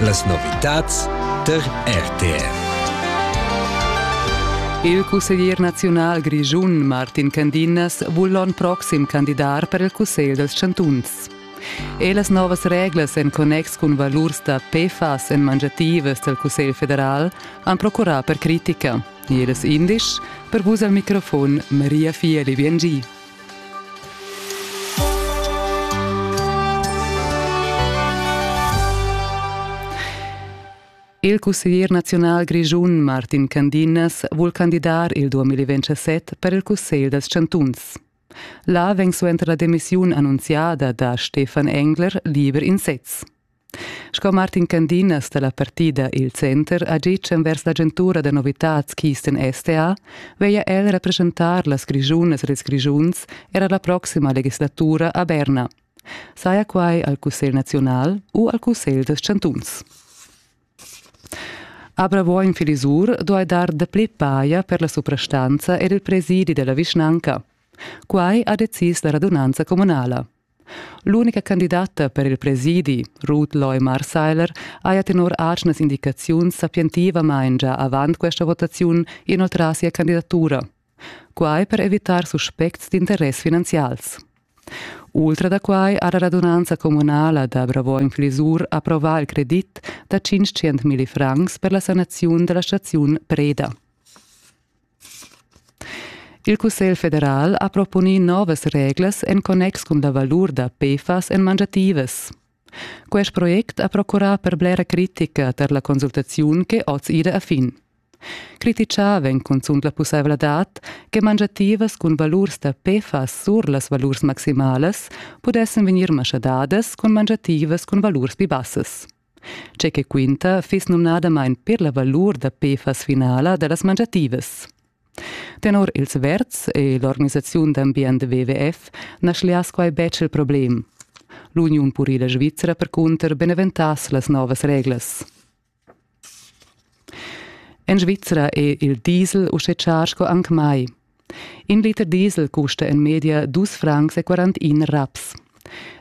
Las novitads tar RTR. Il cusseglier naziunal grischun Martin Candinas vul l'onn proxim candidar per il cussegl dels chantuns. E las novas reglas en connex cun valurs da PFAS en mangiativas del Cussegl federal han procurà per critica. Ed es indisch per vus al microfon Maria Fieli Biengi. Il cusseglier naziunal grischun Martin Candinas vul candidar il 2027 per il Cussegl dals chantuns. Là vegn suenter la demissiun annunziada da Stefan Engler liber in sez. Sco Martin Candinas dalla partida Il Center ha gitg envers l'agentura da novitads Kisten STA veglia el representar las Grischunas ed ils Grischuns era la proxima legislatura a Berna. Saja quai al Cussegl naziunal u al Cussegl dels chantuns. A Bravo in Filisur duai dar dapli paia per la suprastanza ed il presidi della vischnanca. Quai ha decis la radunanza comunala. L'unica candidata per il presidi, Ruth Loy Marseiler, haja tenor atgnas indicaziuns sapientivamain già avant questa votaziun inoltrà sia candidatura. Quai per evitar suspects d'interess finanzials. Ultra da quai ha la radunanza communala da Bravoin-Flisur approvà il credit da 500.000 francs per la sanaziun della staziun Preda. Il Cussegl federal ha proponì novas reglas en connex cun la valur da PFAS en mangiativas. Quest project ha procurà per blera critica tar la consultaziun ch'è oz ida a fin. Criticà vegn cunzunt la pussaivladad che mangiativas cun valurs da PFAS sur las valurs maximalas pudessan vegnir maschadadas cun mangiativas cun valurs pli bassas. Tge che quinta fiss numnadamain per la valur da PFAS finala da las mangiativas. Tenor ils Verts e l'organisaziun d'ambient WWF na schliass quai betg il problem. L'uniun purila svizra percunter beneventass las novas reglas. En Svizra è il diesel uschè char sco anc mai. In liter diesel custa en media dus francs e quarantin raps.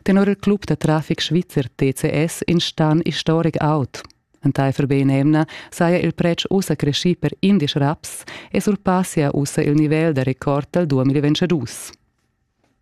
Tenor il club da traffic svizzer TCS in stan historic aut. Entaifer benemna saja il pretsch ussa creschì per indisch raps e surpassia ussa il nivel da record dal 2022.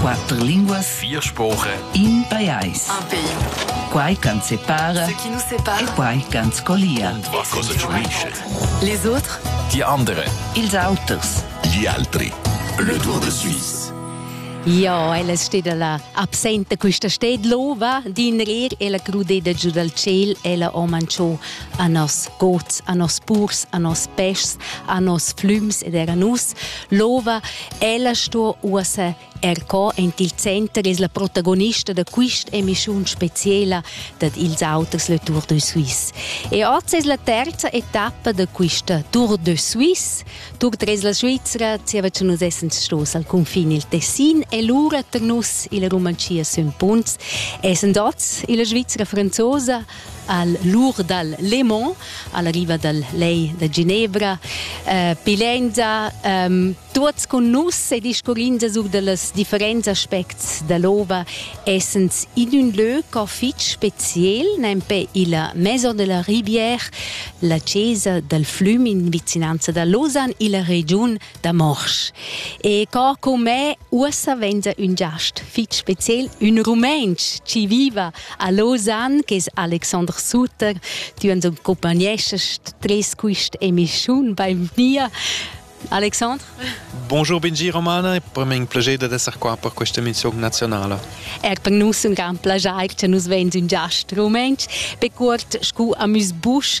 Quatter linguas, vier spoche, in pajais. Un pays. Quai ch'ans separa Ce qui nous sépare. e quai ch'ans collia. Und was kostet Schmiesche? Les autres, Die andere, ils auters. gli altri. Le Tour de Suisse. Ja, ella steda la absenta questa sted lova din rer ella crudeda giu dal ciel ella ho manchò a nos gods, a nos purs, a nos peschs, a nos flüms ed era nus lova Ella sto uossa er co en il center es la protagonista da questa emissiun speciala dad ils auters Le Tour de Suisse. E oggi es la terza etappa da questa Tour de Suisse. Tour tres la Svizzera, zieva che nus essens stos al confin il Tessin e lura tar nus illa Rumanchia sün Punts, essend oz illa Svizzera franzosa, al lur dal Lemon, alla riva dal Lei da Ginevra, eh, pilenda ehm, tuots cun nus e discurrinda sur dallas differents aspects dall'ova, essens in ün lö co fich speziel, nempe illa Maison de la Rivière, la chesa dal flüm in vicinanza da Lausanne illa regiun da morsch. E co con me ussa venza un giast fitg spezial, un rumenc ci viva a Lausanne, che es Alexander Sutter, tu uns accompagnescest tres quist emischiun bei mir. Alexandre? Bonjour Benji Romana, è per me un piacere di essere qua per questa emissione nazionale. Er per noi un gran piacere che nous vens un giast rumenc, per curt scu amus busch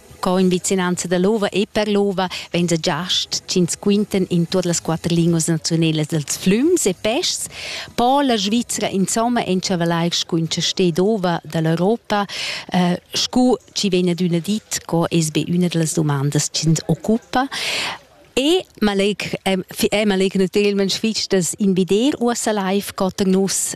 Co in vicinanza da l'ova e per l'ova vegn sa giast ch'ins quintan in tuot las quatter linguas naziunalas dals flüms e peschs. Po la Svizzera insomma enchavalai scuncha sted ova da l'Europa, eh, scu chi vegn adüna dit, co es be üna da las dumandas ch'ins occupa. E maleg, eh, eh maleg natüralment fich das invider uossa live cotter nus